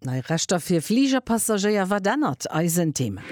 Nei Rechter fir Fligerpassagéier, Wat ännert eisen Thema?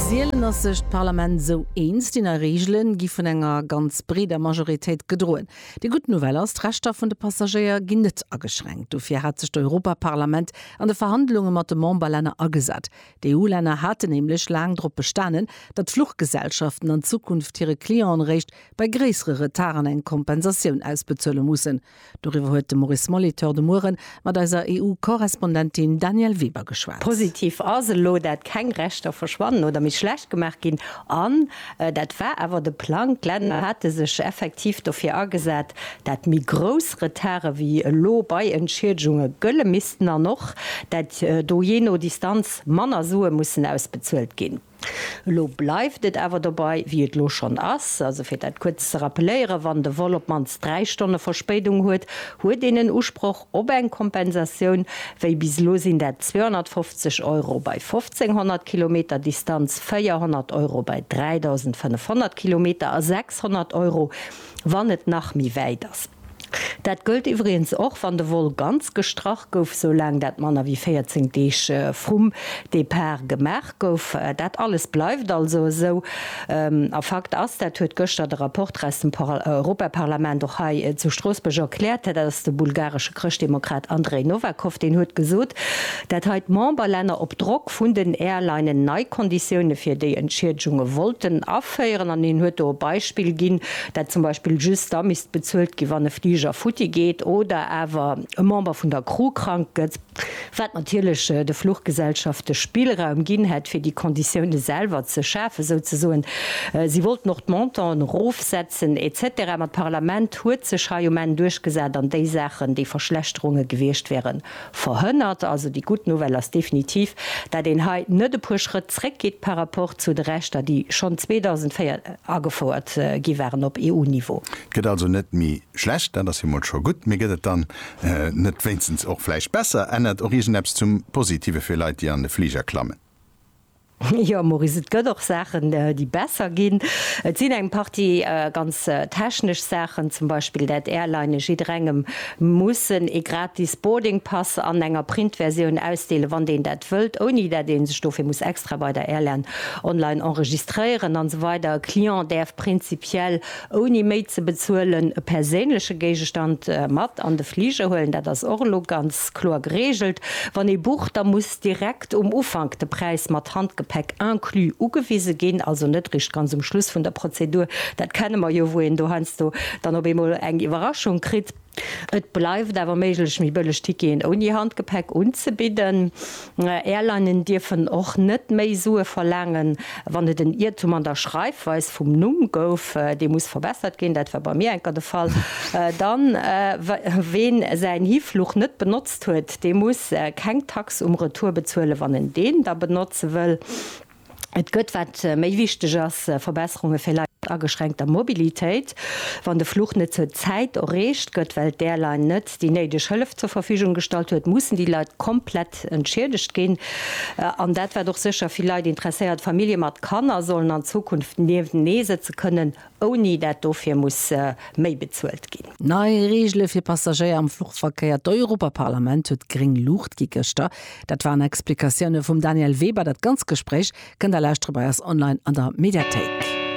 Sielen ass sech d'Parlament esou eens, déi nei Reegele gi vun enger ganz breeder Majoritéit gedroen. Déi gutt Nouvelle ass, d'Rechter vun de Passagéier ginn net ageschränkt. Dofir hat sech d'Europaparlament an de Verhandlunge mat de Memberlänner agesat. D'EU-Länner haten nämlech laang drop bestanen, datt d'Fluchgesellschaften an Zukunft hire Clientenéréischt bei gréissere Retarden eng Kompensatioun ausbezuele mussen. Doriwwer huet de Maurice Molitor de Mueren mat eiser EU-Korrespondentin Danièle Weber geschwat. Positiv ass elo, dat keng Rechter verschwannen oder méi schlecht gemaach ginn. An dat war awer de Plang, d'Länner hate sech effektiv dofir agesat, dat méi grouss Retarde wéi elo bei Entschiedgunge gëlle missten an och, dat do jee no Distanz manner Sue mussen ausbezuelt ginn. Elo bleift et awer dobei, wéi et elo schonn ass. Also fir dat kuerz ze rappeléieren, Wann de Vol op d'mannst dräi Stonne Verspéidung huet, huet een en Usproch op eng Kompensatioun. Wéi bis elo sinn dat 250 Euro bei 1.500 Kilometer Distanz, 400 Euro bei 3.500 Kilometer a 600 Euro, wann et nach méi wäit ass. Dat gëllt iwwregens och, wann de Vol ganz gestrach gouf, soulaang dat manner wéi 14 Deeg vrum Depart gemaach gouf. Dat alles bleift also esou. A Fakt ass, dat huet gëschter de Rapporter aus dem Europaparlament och hei zu Stroossbuerg erkläert, dat ass de bulgaresche Chrëschtdemokrat Andrej Novakov, deen huet gesot, dat hei d'Memberlänner op Drock vun den Airlinen nei Konditioune fir déi Entschiedegunge wollten féieren an hien huet do e Beispill ginn, dat zum Beispill just da misst bezuelt ginn, wann e Fliger futti geet oder awer e Member vun der Crew krank gëtt, wat natierlech de Fluchgesellschafte Spillraum ginn hätt, fir déi Konditioune selwer ze schafen, souzesoen. Si wollten och d'Montanten erofsetzen et cetera. Ma d'Parlament huet sech hei um Enn duerchgesat an déi Saachen, déi Verschlechterunge gewiescht wäeren, Verhënnert. Also déi gutt Nouvelle ass definitiv, dat een hei net e puer Schrëtt zréck geet par rapport zu de Rechter, déi schonn 2004 agefouert gi waren op EU-Niveau. Et gëtt also net méi schlecht, dat ass jo mol scho gutt. Mee gëtt et dann net wéinstens och vläicht besser? Ännert och iergend eppes zum Positive fir Leit, déi an de Fliger klammen? Jo Maurice, et gëtt och Saachen déi besser ginn. Et sinn eng Partie ganz technesch Saachen, zum Beispill dat Airlinene jidderengem mussen ee gratis Boarding Pass an enger Printversioun ausdeelen, wann deen dat wëllt, ouni dat ee sech dofir muss extra bei der Airline online enregistréieren an esou weider E Client däerf prinzipiell ouni méi ze bezuelen e perséinleche Géigestand mat an de Fliger huelen, dat ass och elo ganz kloer geregelt. Wann ee bucht, da muss. direkt um Ufank de Präis mat Handgepäck inclus ugewise ginn, also net eréischt ganz um Schluss vun der Prozedur, dat kenne mer jo, wou een do heiansdo dann op eemol eng Iwwerraschung kritt. Et bleift awer méiglech, méi bëlleg Ticketen ouni Handgepäck unzebidden. Airlinen dierfen och net méi Sue verlaangen, wann et en Iertum an der Schreifweis vum Numm gouf, dee muss verbessert ginn, dat war bei mir enker de Fall, dann, ween säin Hifluch net benotzt, huet, dee muss keng Tax um Retour bezuelen, wann en deen da benotze wëll. Et gëtt, wat méi wichteg ass, Verbesserunge fir Leit mat ageschränkter Mobilitéit, wann de Fluch net zur Zäit erreecht gëtt, well d'Airline net déi néideg Hëllef zur Verfügung gestallt huet, mussen déi Leit komplett entschiedegt ginn. An dat wat och sécher vill Leit interesséiert, Famillje mat Kanner sollen an Zukunft niewentenee sëtze kënnen, ouni dat dofir muss méi bezuelt ginn. Nei Reegele fir Passagéier am Fluchverkéier, d'Europaparlament huet gréng Luucht gi gëschter. Dat waren Explikatioune vum Daniel Weber. Dat ganz Gespréich kënnt der lauschtere bei eis online an der Mediathéik.